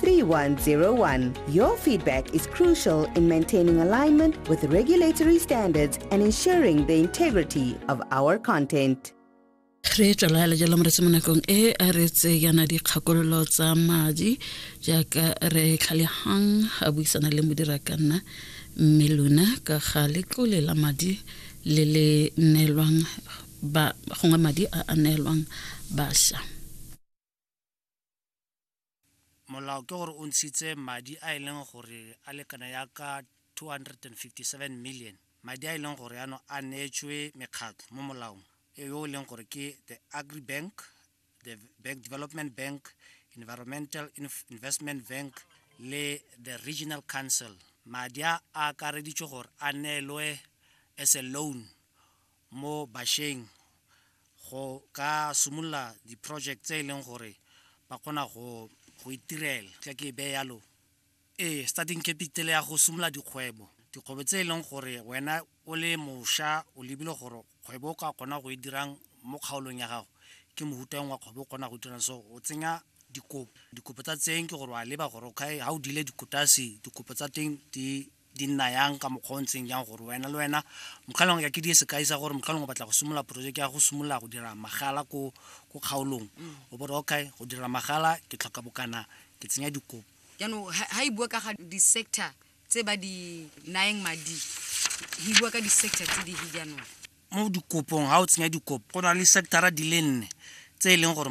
3101. Your feedback is crucial in maintaining alignment with regulatory standards and ensuring the integrity of our content. re tswalala jalo mo re se mo nakong e a re tse yana dikgakololo tsa madi jaaka re tlhalehang a buisana le modira ka nna mme lona ka ga letlole la madi le le neelwang gongwe madi a a neelwang basha molao ke gore o ntshitse madi a e leng gore a lekana ya ka 257 million madi a e leng gore ano a neetswe mekgatlho mo molaong e yo e leng gore ke the agri bank the bank development bank environmental investment bank le the regional council madi a akareditswe gore a neelwe as a loan mo bašweng go ka simolola di-project tse e leng gore ba kgona go itirela tla ke e beye yalo ee starting capital ya go simolola dikgwebo dikgwebo tse e leng gore wena o le mošwa o lebile gore kgwebo o ka kgona go e dirang mo kgaolong ya gago ke mohutang wa kgwebo o kgona go dirang so o tsenya dikopo dikopo tsa tseng ke gore wa leba gore okay ga o dile dikotase dikopo tsa teng di di nna yang ka mokgwa o ntseng jang gore wena le wena mokgalong ya ke di sekai sa gore mokgalong o batla go simolola projeke ya go simolola go dira magala ko kgaolong o bore okay go dira magala ke tlhoka bokana ke tsenya dikopo jaanong ha e bua ka ga di-sector tse ba di nayeng madi e bua ka di-sector tse di jaanong mo dikopong ga o tsenya dikopo go na le sectora di le nne tse e leng gore